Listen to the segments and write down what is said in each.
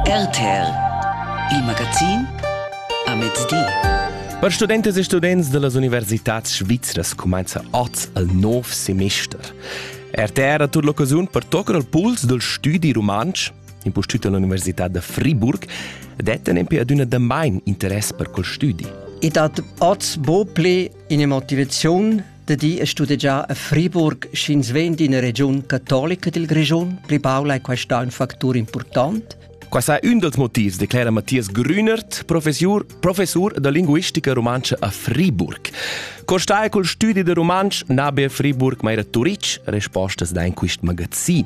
RTL Il magazin a mezdi. Per studentas e students da las universitads svizras cumanza oz il nov semester. RTR ha tut l'occasiun per toccare al puls del studi rumantsch, impustüt all'Università da Friburg, detta nempe ad una damain interess per quel studi. E dat oz bo ple in motivaziun Da di è studegià a Friburg sch'ins vegn d'ina regiun catolica dil Grischun. Pli baul ei questa un factur important. Quai è un dals motivs, declera Matthias Grünert, professor, professor da linguistica rumantscha a Friburg. Co stai col studi da rumantsch? Nabe a Friburg, ma era Turic? Respostas da in quist magazin.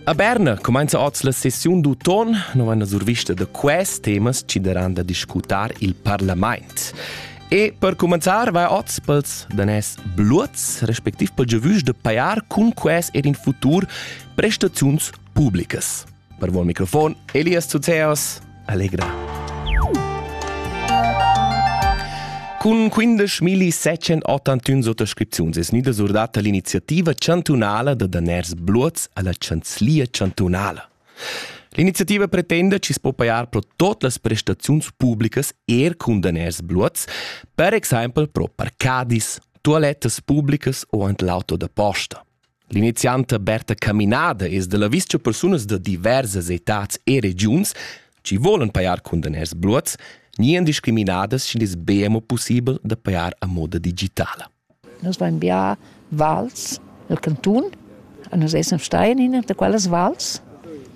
A Berna cumainza oz la sessiun d'uton, no vaina survista da quest temas chi daran da discutar il parlamaint. E per cumanzar vai oz pels danès bluots, respectiv pel giovüs da paiar cun quest er in futur prestaziuns publicas. Per vos microfon Elias Zuzeos, Allegra. Cun 15.781 suttascripziuns es gnida surdata l'iniziativa chantunala da daners bluots alla chanzlia chantunala. L'iniziativa pretenda chi s'po pajar pro tot las prestaziuns publicas er cun daners bluots, per exaimpel pro parcadis, toalettas publicas o ant l'auto da posta. L'inizianta Berta Caminada es da l'avis cha persunas da diversas etats e regiuns chi volan pajar cun daners bluots gnian discriminadas schi'd es be amo pussibel da pajar a moda digitala. Nus vain bià vals al cantun e nus essan stai in üna da quellas vals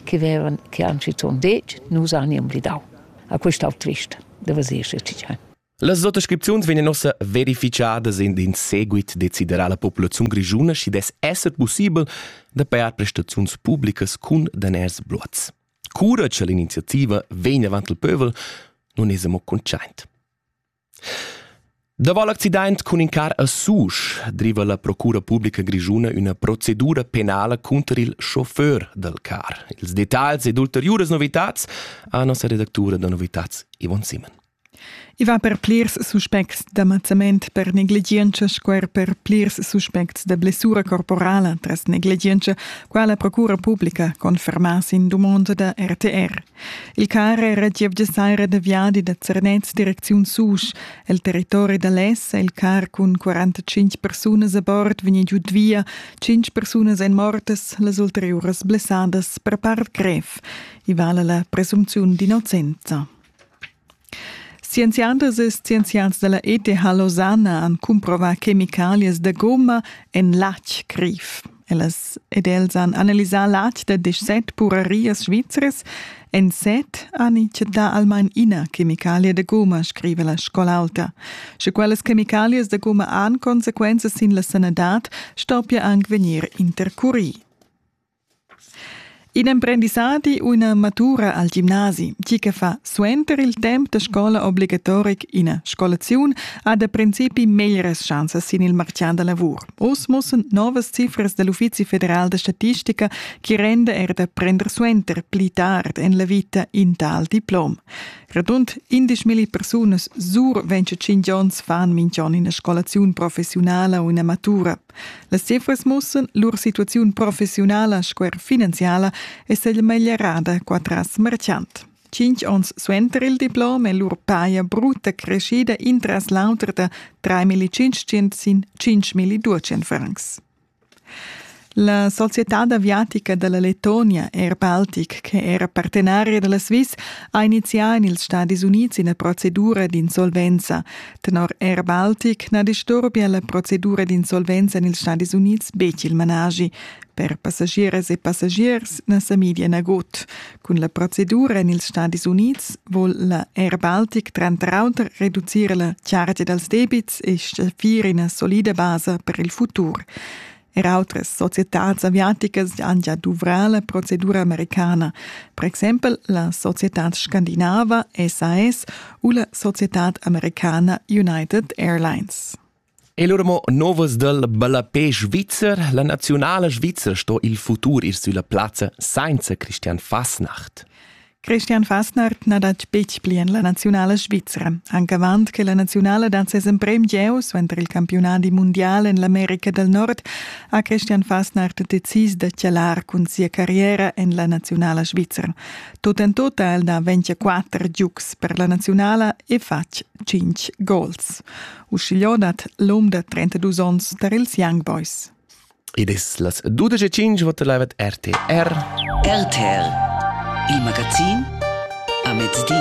che vevan che han schizunt detg nus han imblidau. A quest'au twist da vasir schi Las sottascripziuns vegnan ussa verifichadas in in seguit deciderà la populaziun grischuna, schi dess esser pussibel da pajar prestaziuns publicas cun daners bluats. Cura che l'iniziativa vegn avant il pövel, nun es amo consciaint. Daval l'accident cun in car a Susch driva la Procura publica grischuna üna procedura penala cunter il chauffeur dal car. Ils detagls ed ulteriuras novitats ha nossa redactura da novitats Yvonne Simon. I va per plirs suspects da mazzament per negligientscha sco er per plirs suspects da blessura corporala tras negligientscha, qua la Procura publica confermà sin dumonda da RTR. Il car era gievgia saira da viadi da Zernez direcziun Susch. El territori da Les è il car cun 45 persunas a bord vegni giud via, 5 persunas èn mortas, las ulteriuras blessadas per part grev. I vala la presumpziun d'innocenza. Scienziadas e scienziads dalla ETH Lausanna han cumprovà chemicalias da gomma en latg criv. Ellas ed els han analisà latg da disset purerias svizras. En set han i chattà almain ina chemicalia da gomma, scriva la scola alta. Sche quellas chemicalias da gomma han consequenzas sin la sanadad, stoppia anc vegnir intercurì. In emprendissadi u ina matura al gimnasi, tgi che fa suenter il temp da scola obligatoric ina scolaziun, ha da principi meglras schanzas sin il martgà da lavur. Oz mussan novas cifras dal Uffizi federal da statistica che renda er da prender suenter pli tard en la vita in tal diplom. Radund 11.000 persunas sur 25 onns fan mintg'on ina scolaziun professiunala u ina matura Las cifras mussan lur situaziun professiunala sco er finanziala è stata meglierada qua tras Merchant. Cinque onns suenter il diplom è lur paia brutta crescida intras l'auter da 3.505 francs. La società aviatica della Lettonia Air Baltic, che era partenaria della Swiss, ha inizià in ils Stati Uniti una procedura d'insolvenza. Tenor Air Baltic na disturbia la procedura d'insolvenza en ils Stadis Unids betg il managi. Per passagiers e passagiers na sa media nagut. Cun la procedura en ils Stadis Unids vul la Air Baltic tranter auter reducir la chargia dals debits e stgaffir ina solida basa per il futur. Er autres societads aviaticas han gia duvrà la procedura americana, per exempel la societad scandinava SAS u la societad americana United Airlines. E lur mo novas dal ballapé svizzer, la nazionala svizzer sto il futur ir sulla plazza senza Christian Fasnacht. Christian Fastnert n'ha detg betg pli en la naziunala svizra. Anc avant che la naziunala dat ses emprem gieu suenter il campiunadi mundial en l'America del Nord ha Christian Fastnert decis da chalar cun sia carriera en la naziunala svizra. Tut en tut ha el da 24 giugs per la naziunala e fatg 5 gols. Uschigliò dat l'um da 32 onns tar ils Young Boys. Id es las 12.05 vot live RTR. RTR, il magazin a mezdi.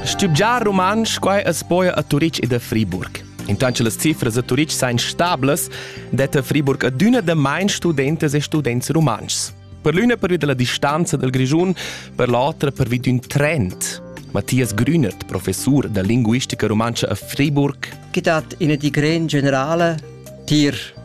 Stübgiar rumantsch quai es poia a Turic ed a Friburg. Intanto las cifras a Turic sain stables, detta Friburg adüna da main studentas e students rumantschs. Per l'üna pervi della distanza dal Grischun, per l'otra pervi d'ün trend. Matthias Grünert, professor da linguistica rumantscha a Friburg. Che dat ina di gran generale tier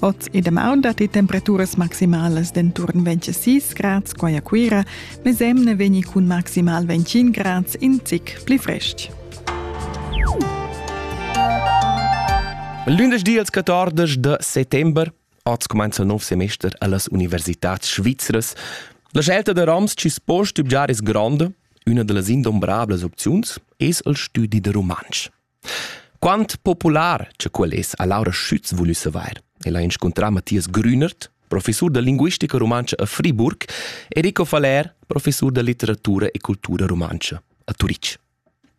Oz e damaun datti temperaturas maximalas d'enturn 26 grads qua a Cuira, mesemne vegni cun maximal 25 grads in zic pli frestg. Lündeschdi als 14 de settembre Oz comincia il nuovo semester alle Università Svizzeres. La scelta da Rams ci spo stübgiar es grande, una delle indombrables opzioni es il studi de romansch. Quant popular che quel es ha Laura Schütz vulü savair. El ha inscuntrà Matthias Grünert, professur da linguistica rumantscha a Friburg, e Rico Faller, professur da litteratura e cultura rumantscha a Turitg.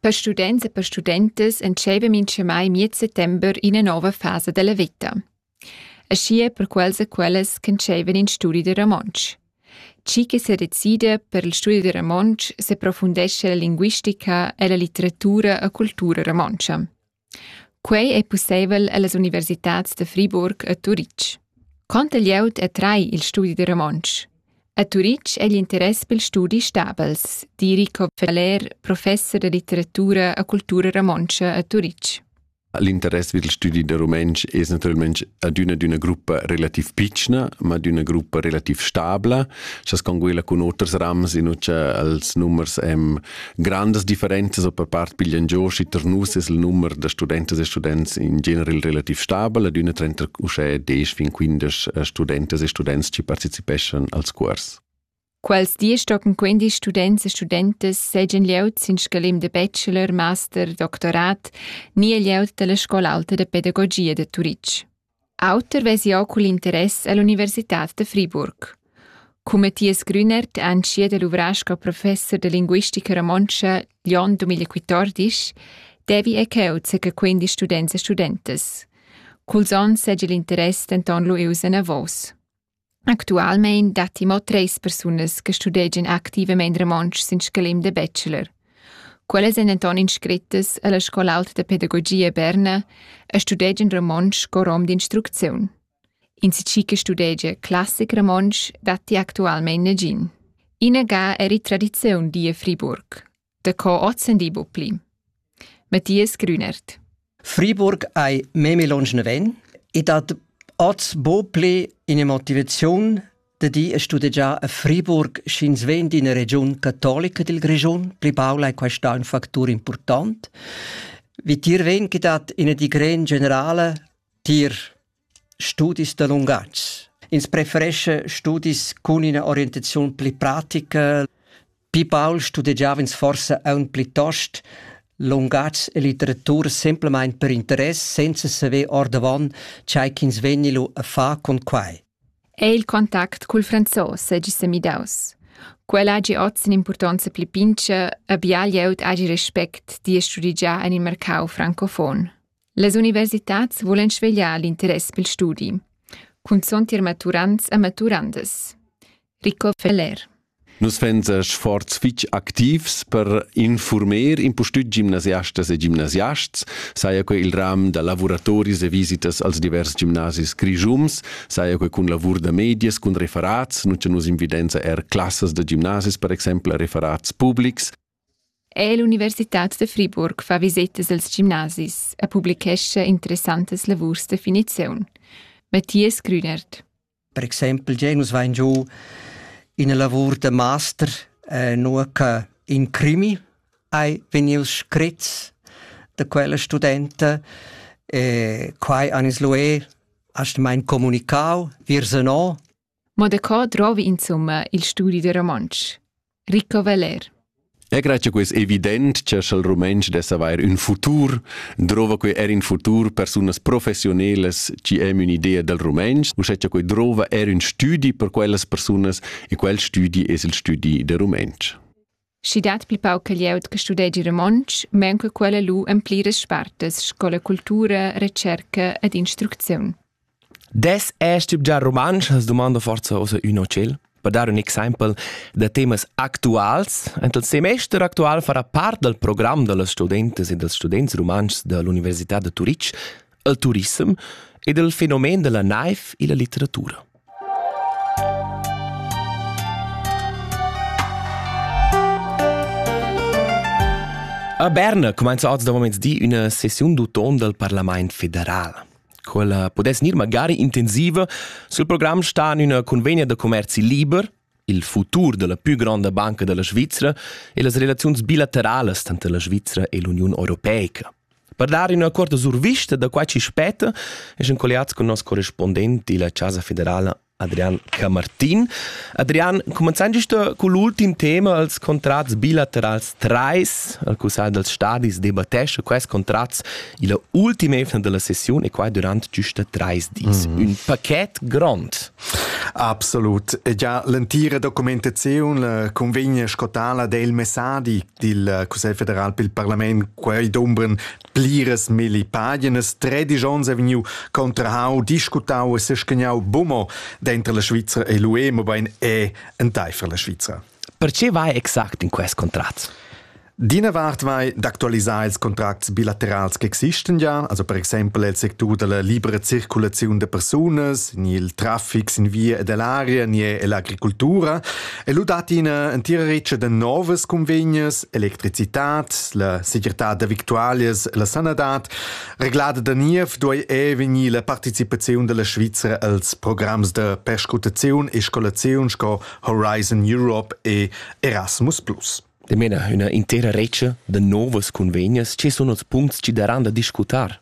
Per students e per studentas entscheiva minch'emai miez settember ina nova fasa della veta. Aschia per quels e quellas ch'entscheivan in studi da romontsch. Tgi che sedecida per il studi da romontsch seprofundescha la linguistica ella litteratura e cultura romontscha. Quei ei pusseivel ellas universitads da Friburg e Turitg. Conta glieud attrai il studi da romontsch. A Turitg è l'interess per il studi stabels, di Rico Feller, professor da litteratura e cultura romontscha a Turitg. L'interess vid il studi da rumentsch es natüralmaing adüna d'üna gruppa relativ pitschna, ma d'üna gruppa relativ stabla, cha sconguela cun oters rams in ucha als numers hem grandas differenzas o per part piglian giò, schi ter nus es il numer da studentas e students in general relativ stabel, adüna trenta uschè desch fin quindesch studentas e students chi partecipeschan als cuors. Quels dis stocken quindi students e studentas seigien glieud sin scalem de bachelor, master, doctorat ni e glieud dalla scola alta de pedagogia de Turitg. Auter vesi auch cul interess all'Università de Friburg. Cum Matthias Grünert anschiet el uvrasco professor de linguistica romontscha Lyon 2014, devi e cheu zeca quindi students e studentas. Culs onns seigi l'interess denton lu ius enavos. Actualmein datti mo treis persunas che studegian activamein romontsch sin scalem da bachelor. Quellas ein denton inscrittas alla Scola auta da pedagogia Berna e studegian romontsch co rom d'instrucziun. Insatgi che studegia classic romontsch datti actualmein negin. Ina ga eri tradiziun die Friburg. Daco ozendi bu pli. Matthias Grünert. Friburg ei meme longe ven e dat oz bo ple in motivazion de di a studegiar a Friburg sch'ins ven d'ina region cattolica del Grigion, pli paula è questa un factor important, wie tier ven che dat ina di gran generale tier Studis da lungatg. Ins preferescha studis cun ina orientaziun pli pratica. Pli baul studegiava ins forsa aunc plitost lungatg e litteratura semplamein per interess, senza saver ordavon tgei ch'ins vegni lu a far cun quei. Ei il contact cul franzos seigi semidaus. Quel hagi oz impurtonza pli pintscha, abia glieud hagi respect di e studigiar en il mercau francofon. Las universitads vulan svegliar l'interess pel studi, cunzont ir maturants e maturandas. Rico Feller Nus vegns sforz fitg activs per informer impustüt gimnasiastas e gimnasiasts, saja que il ram da lavuratoris e visitas als divers gimnasis grischums, saja que cun lavur da medias, cun referats, nun cha nus invidenza er classas da gimnasis per exaimpel a referats publics, È l'universitad da Friburg fa visetas als gimnasis e publichescha interessantas lavurs da finiziun. Matthias Grünert. Per exempel già nus vain giù ina lavur da master eh, nur che in crimi hai vegnius scrit da quella studenta e quai anis lué hast mein comunicau virse no Mo da co drovi insumma il studi da romontsch? Rico Veller E crai che quei è evident che sch'el rumentsch dess avair un futur, drova quei er in futur persunas professionelas ci emu un'idea del rumentsch, u sche che quei drova er un studi per quellas persunas e quel studi es il studi del rumentsch. Schi dat pli pauc che glieud che studegi romontsch, maunca quella lu en pliras spartas scola cultura, retscherca ed instrucziun. Des es tip già rumantsch? Has domanda forza ossa ün o tschel? Per dar un exempel da temas actuals, en il semester actual farà part dal program da las studentas e dals students rumantschs da l'Università da Turitg il turissem ed il fenomen dalla naiv illa litteratura. A Berna cumainza oz da moments di üna sessiun d'uton dal Parlament federal. Quella pudess gnir magari intensiva sul program sta in üna convegna da commerzi liber il futur della pü gronda banca della Svizra e las relaziuns bilateralas tanter la Svizra e l'Uniun Europeica. Per dar üna corta survista da quai chi spetta, essan colliats con nos correspondent illa Casa Federala Adrian Camartin. Adrian, comenzand giusta con l'ultim tema als contrats bilaterals 3, al Cussagl dels Stadis debattescha quels contrats illa ultima efna della sessiun e quai durant giusta 3 dis. Mm -hmm. Un paquet grond. Absolut. Gia l'entira documentaziun eh, cunvegna sco tala del messadi dil Cussegl federal pel parlament. Quei dumbren pliras milli paginas. Tredic onns ha vegniu contrahau, discutau e seschegnau bumo dentro la Svizzera e l'UE, mobein è enteifer la Svizzera. Perche vai exact in quest contrat? D'ina vart vai d'actualisar ils contracts bilaterals che existan ja, also per exempel il sectur della libera circulazione de persunas, ni il traffic in via e dell'aria, ni l'agricoltura, e lu dat ina entira riccia de novas convegnes, electricitat, la segirtad de victualias, la sanadad. Reglada da niev duei e vegnir la participazione della Svizzera als programms de perscrutazione e scolazione sco Horizon Europe e Erasmus+. Dimena ha üna intera redscha da novas cunvegnas che sun ots puncts chi daran da discutar.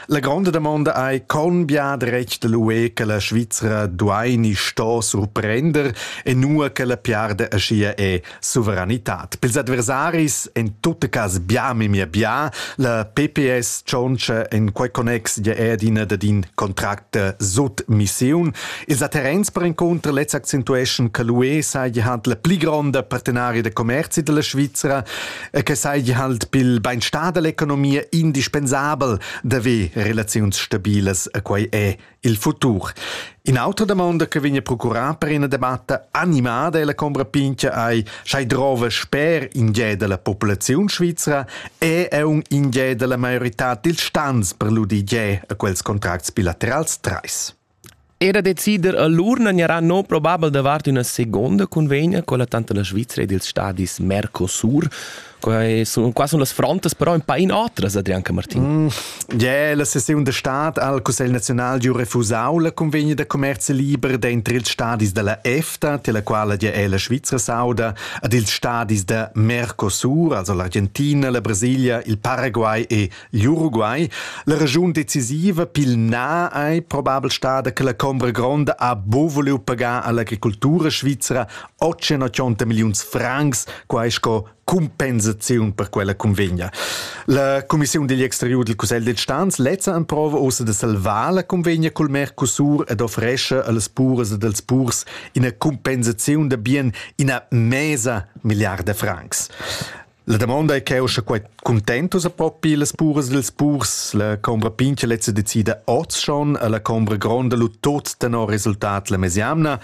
La gronda damonda ei con bia dretg da l'UE che la Svizra duai ni sto surprender e nua che la piarda aschia è suveranitad. Pils adversaris en tutte cas bia memia bia. La PPS tschontscha en quei connex ja ed ina dad in contract sut missiun. Ils terrens perencunter lez accentueschan che l'UE saja halt la pli gronda partenaria da commerzi della Svizzera e che saja halt pil beinstar dell'economia indispensabel d'haver relaziuns stabilas a quei è il futur. In autra domanda che vegna procurà per una debatta animada è la combra pintia ai schai drova sper ingiè della popolazione svizzera è è un ingiè della maiorità dil stans per l'udigiè a quels contracts bilaterals trais. Era decider allura non gnarà non probabel davart üna segonda convegna con la tanto la Svizra ed ils stadis Mercosur. Quai sun, qua sun las frontas però un pa in otras, Adrian Camartin. Mm, yeah, la seziun stat al Cussegl nazional giù refusau la convegna da commercio liber dentro ils stadis della EFTA, tela quala ja è la Svizra sauda, ad ils stadis da Mercosur, also l'Argentina, la Brasilia, il Paraguay e L'Uruguay, la regiun decisiva pil na ei probabel stada che la combra gronda ha buca vuliu pagar all'agricultura svizra 880 milliuns francs, quai sco compensaziun per quella convegna. La Commissiun digl exteriur dil Cussegl de Stans lezza emprova ussa de salvar la convegna col Mercosur ed offresce allas puras ed als purs ina compensaziun da bien ina mesa milliarda francs. La damonda è cheu sche quei cuntentus a propi las puras dils purs, la combra pintga lezza decida oz schon, la combra gronda lu tot tenor resultat la mesiamna.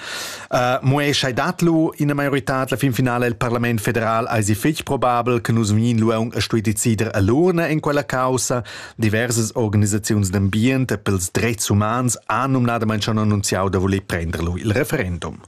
Uh, mo ei schei dat lu ina maioritad la fin finale il Parlament federal eisi fetg probabel che nus vegin lu aunc a stui decider a l'urna in quella causa. Diversas organisaziuns d'ambient e pels dreits umans han numnadamente schon annunziau da voler prender lu il referendum.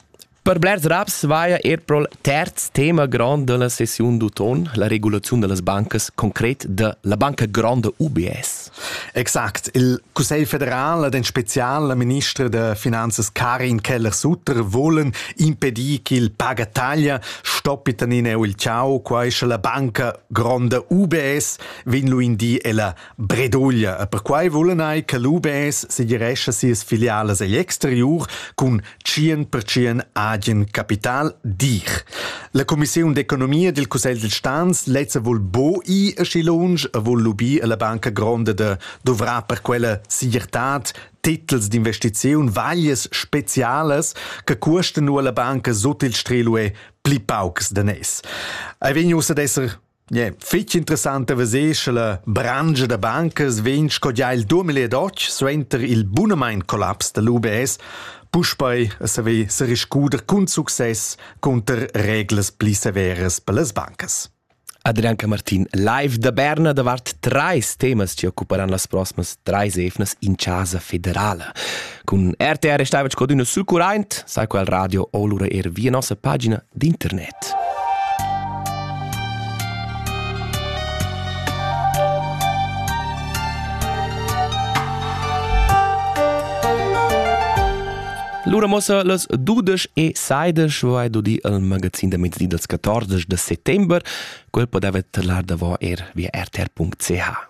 Per blers raps vaia er prol terz tema grand della sessiun d'uton, la regulaziun dellas bancas, concret de la banca grande UBS. Exakt. Il Cussegl federal, den spezial minister de finanzes Karin Keller-Sutter, volen impedir ch'il pagataglia stoppi tanine il ciao, quai sche la banca grande UBS vin lu in di ella Breduglia e perquai vulan ei che l'UBS segirescha sias filialas egl exteriur cun 100% agen capital, dir. La Commissiun d'economia dil Cussegl dil Stans lezza vul bo i aschi lunsch e vul lubir alla banca gronda de dovrar per quella segirtad titels d'investiziun vaglies specialas che cuosten nu alla banca sut il strelue pli paucs de nes. Ei vegn ussa d'esser Yeah, fitg interessant da veser sche la brangia da bancas vegn sco gia il 2008 suenter il bunamain collaps da l'UBS puspei a saver seriscuder cun success cunter reglas pli severas per las bancas. Adrianca Martin, live da Berna davart treis temas che occuparan las proximas treis evnas in casa federala. Cun RTR stava sco d'una succurraint, sai quel radio o lura er via nossa pagina d'internet. Lura mossa las dudesch e seidesch vai do di al magazin da mezdi dals 14 de settember, quel podeva tlar davo er via rtr.ch.